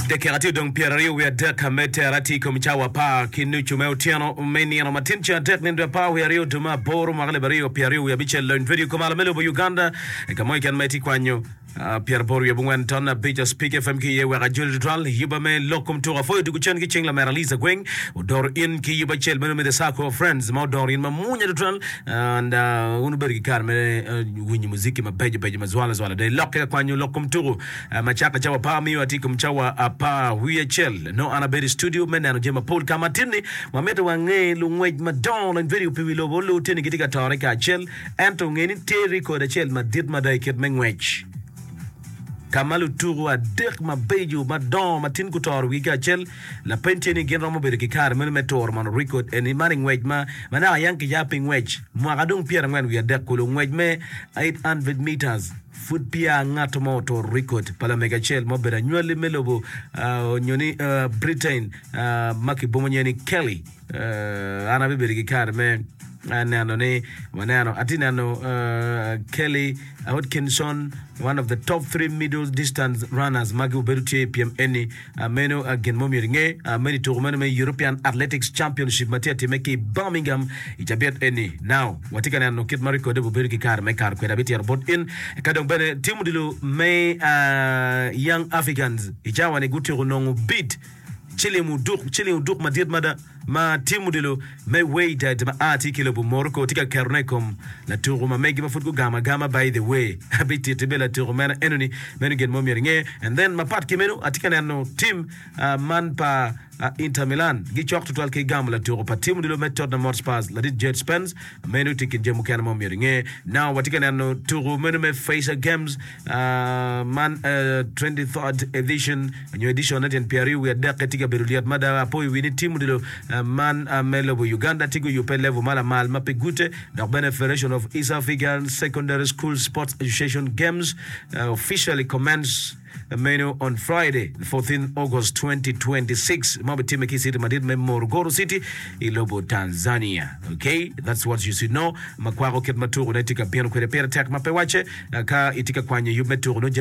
Dakika tye odong pyeraryo wiye adek me tera tye i kom cawa apar ki nucu me otyeno me nino matin ceng adek nino dwe apar wiye aryo dwe me aboro mwaka alip aryo pyeraryo wiye abicel. Lony Vedio Kumalo me lobo Uganda i ka mo keken ma itye kwanyo pyeraboro wiye abongwen ton abic Spik FM ki iye wek ajoli tutwal yuba me lok kom tuko afoyo dwogo cen ki cing lamera Liza Gweng odoro in ki yuba acel meno me The Circle of Friends ma odoro in ma munya tutwal and wun wubedo ki kare me winyo muziki mabeco beco ma zwala zwala dong ilokke ka kwanyo lok kom tuku ma caka cawa apar miyo atye ikom cawa apar wiye acel nongo an abedo i studio me neno jami mapol ka ma atinni ma mitte wange lungwec madongo lony vedio pi wi lobo lu tinni gitye ka tore kacel ento nge ni tye record acel madit mada i kit me ngwec ka ma lutuku adek mabeco madongo ma tin gutoro wigi kacel Lapeny tye ni gin romo bedo ki kare meno me turo mono rekod eni man i ngwec ma ma naka yang kiya pi ngwec mwaka dong pyera angwen wiye adek kulu, ngwec me 800 metres. Pud peya ngato mo oturo rekod pa lamege acel ma obedo anywali me lobo onyo ni Britain ma ki bomo nyinge ni Kelly. An abibedo ki kare me neno ni waneno. Atye neno Kelly Hodkinson, one of the top three middle distance runners ma obedo tye i pyem eni. Meno gin mo myero inge, meno i tuko meno me European Athletics Championship ma tye atime ki i Birmingham i cabit eni. Now, watye ka neno kit ma rekode obedo ki kare me karo kwede abityero bot in. Eka dong bene tim odilo me Young Africans i cawa-ni gutyeko nongo bid. Cilim oduk, Cilim oduk madit mada ma tye mudilo me Wydad ma a ki i lobo Morocco tye ka ketone i kom latuko ma megi ma pud gugamo agama by the way abi titi bene latuko meno enoni meno gin mo myero inge and then mapat ki meno atye ka neno team man pa Inter Milan gicok tutwal ki gamo latuko pa team odilo me Tottenham Hotspurs ladit Djed Spence Meno tye kit jami mukene ma omyero inge. Now watye ka neno tuku meno me Facer Games man 23rd edition nyo edition ne tyen pyeraryo wiye adek tye ka bedo lyet mada. Apoyo wi ni team odilo man me lobo Uganda tye guyubbe level ma lamal ma pe gute dok bene Federation of East African Secondary School Sports Association Games officially commenced Meno on Friday, fourteen August twenty twenty six ma obitimme ki i city madit me Morogoro City i lobo Tanzania. Ok, that's what you should know ma kwako kit ma tuku ne tye ka bino kwede. Pire tek ma pe wacce ka itye ka kwanyo yub me tuku nongo jami